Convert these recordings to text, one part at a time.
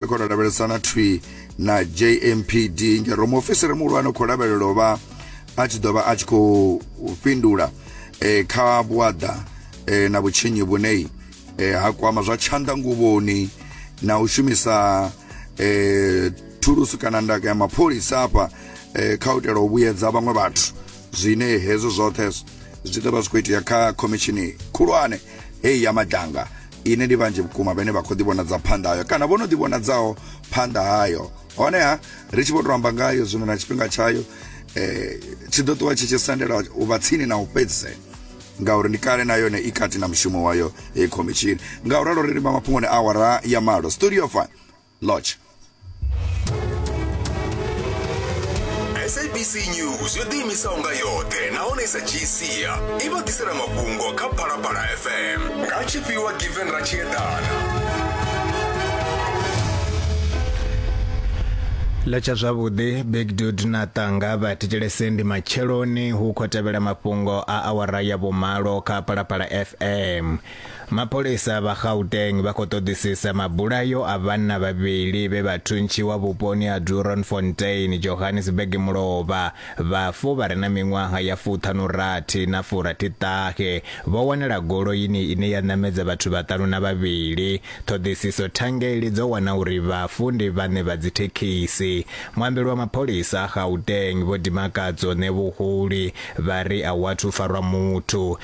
khou tou lavhelesana thwi na jmpd ngero muofisiri muhulwane khou lavhelela u vha a tshi ḓo vha a tshi khou fhindula e, kha vhuaḓa e, na vhutshinyi vhune e, ha kwama zwa tshanḓa nguvhoni na u shumisa e, thulusu kana ndaka ya mapholisa afha e, kha u itela u vhuyedza vhaṅwe vhathu zwine hezwo zwoṱhe zwi ḓo vha zwi khou itea kha khomishini khulwane heyi ya madanga ine ndi vhanzhi vhukuma vhane vha khou ḓivhonadza phanḓa hayo kana vho no ḓivhonadzaho phanḓa hayo honeha ri tshi vho tou amba ngayo zwino na tshifhinga tshayo eh tshi ḓo ṱuwa tshi tshi sendela u vha tsini na u fhedzisela ngauri ndi kale na yone i kati na mushumo wayo heyi khomishini nga u ralo ri limba mafhungoni awara ya malo studio fine lodge sabc news yo ḓiimisaho nga yoṱhe nahone i sa dzhii sia i vha ḓisela mafhungo kha phalaphala fm nga tshifhiwa given ratshiedana ḽa tsha zwavhuḓi big dud na ṱanga vha thetshelese ndi matsheloni hu khou tevhela mafhungo a awara ya vhumalo kha phalaphala fm Mapholisa vha Gauteng vha khou ṱoḓisisa mabulayo a vhanna vhavhili vhe vha thuntshiwa vhuponi ha Doornfontein, Johannesburg mulovha. Vhafu vha re na miṅwaha ya fuṱhanurathi na furathiṱahe vho wanala goloini ine ya ṋamedza vhathu vhaṱanu na vhavhili. Ṱhoḓisiso thangeli dzo wana uri vhafu ndi vhaṋe vha dzithekhisi. Muambeli wa mapholisa a Gauteng Vho Dimakadzo Ṋevhuhuli vha ri a hu athu farwa muthu.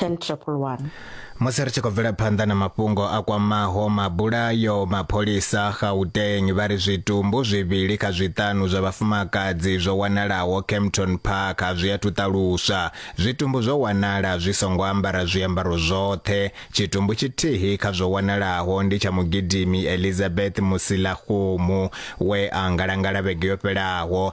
10111. musi ri tshi khou bvela phanḓa na mafhungo a kwamaho mabulayo mapholisa gauteng vha ri zwitumbu zwivhili kha zwiṱanu zwa vhafumakadzi zwo wanalaho campton park a zwi athu ṱaluswa zwitumbu zwo wanala zwi songo ambara zwiambaro zwoṱhe tshitumbu tshithihi kha zwo wanalaho ndi tsha mugidimi elizabeth musilaxumu we a ngalangala vhege yo fhelaho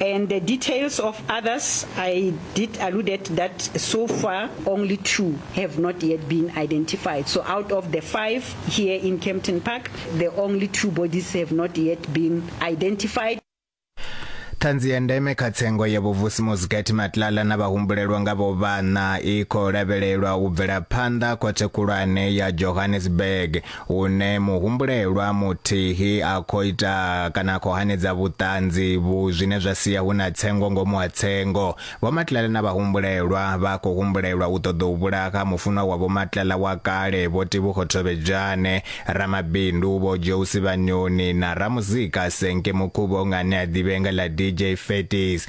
And the details of others, I did alluded that so far only two have not yet been identified. So out of the five here in Kempton Park, the only two bodies have not yet been identified. ṱhanzi ya ndeme kha tsengo ya vhuvusi muzikati matlala na vhahumbulelwa nga vho vhana i khou lavhelelwa u bvela phanḓa khothe khulwane ya johannesburg hune muhumbulelwa muthihi a khou ita kana a khou hanedza vhuṱanzi vhu zwine zwa sia hu na tsengo ngomu ha tsengo vho matlala na vhahumbulelwa vha khou humbulelwa u ṱoḓa u vhulaha mufunwa wa vho matlala wa kale vho tibukho thovhedzhane ramabindu vho jousi vhanyoni na ramuzika senke mukhuvho nga ane a ḓivhea nga ḽa dj fetis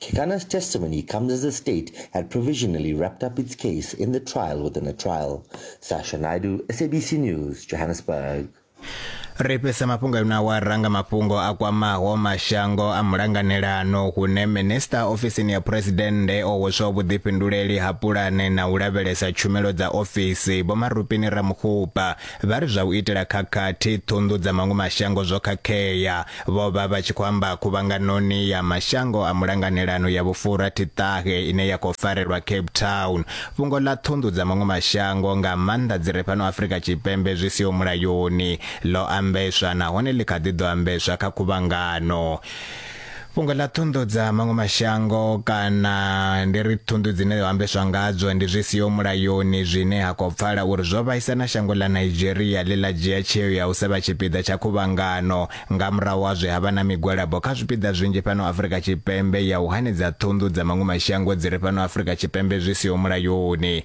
Kekana's testimony comes as the state had provisionally wrapped up its case in the trial within a trial. Sasha Naidu, SABC News, Johannesburg. ri fhisa mafhungo a na wa ranga mafhungo a kwamaho mashango a mulanganelano hune minista ofisini ya phuresidennde o hweswa vhuḓifhinduleli ha pulane na u lavhelesa tshumelo dza ofisi vho marupini ramukhupa Vha ri zwa u itela khakhathi, ṱhunḓu dza maṅwe mashango zwo khakhea. Vho vha vha tshi khou amba khuvhanganoni ya mashango a mulanganelano ya vhufura Thiṱahe ine ya khou farelwa Cape Town. Fhungo ḽa ṱhunḓu dza maṅwe mashango, nga maanḓa dzi re fhano Afrika Tshipembe zwi siho mulayoni, ḽo ambeswa nahone ḽi kha ḓi ḓo ambeswa kha khuvhangano. fhungo ḽa thundu dza maṅwe mashango kana ndi ri thundu dzine ho ambeswa ngadzo ndi zwi siho mulayoni zwine ha khou pfala uri zwo vhaisa na shango ḽa nigeria ḽe ḽa dzhia tsheo ya u sa vha tshipiḓa tsha khuvhangano nga murahu ha zwe ha vha na migwalabo kha zwipiḓa zwinzhi fhano afrika tshipembe ya u hanedza thundu dza maṅwe mashango dzi re fhano afrika tshipembe zwi siho mulayoni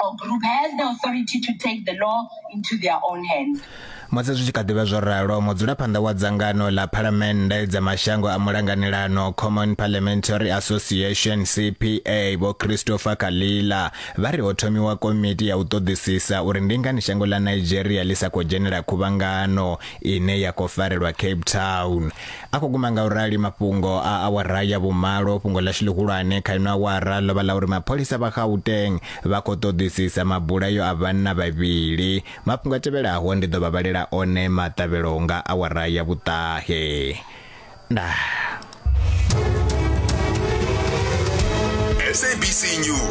or group has the authority to take the law into their own hands. musi zwi tshi kha ḓivha zwo ralo mudzulaphanḓa wa dzangano ḽa phalamennde dza mashango a mulanganelano common parliamentary association cpa vho christopher kalila vha ri ho thomiwa komiti ya u ṱoḓisisa uri ndi ngani shango ḽa nigeria ḽi sa khou dzhenela khuvhangano ine ya khou farelwa cape town A khou guma nga u rali mafhungo a awara ya vhumalo. Fhungo ḽashu ḽihulwane kha ino awara ḽo vha ḽa uri mapholisa vha Gauteng vha khou ṱoḓisisa mabulayo a vhanna vhavhili. Mafhungo a tevhelaho ndi ḓo vha vhalela one maṱavhelo nga awara ya vhuṱahe. Ndaa. SABC News.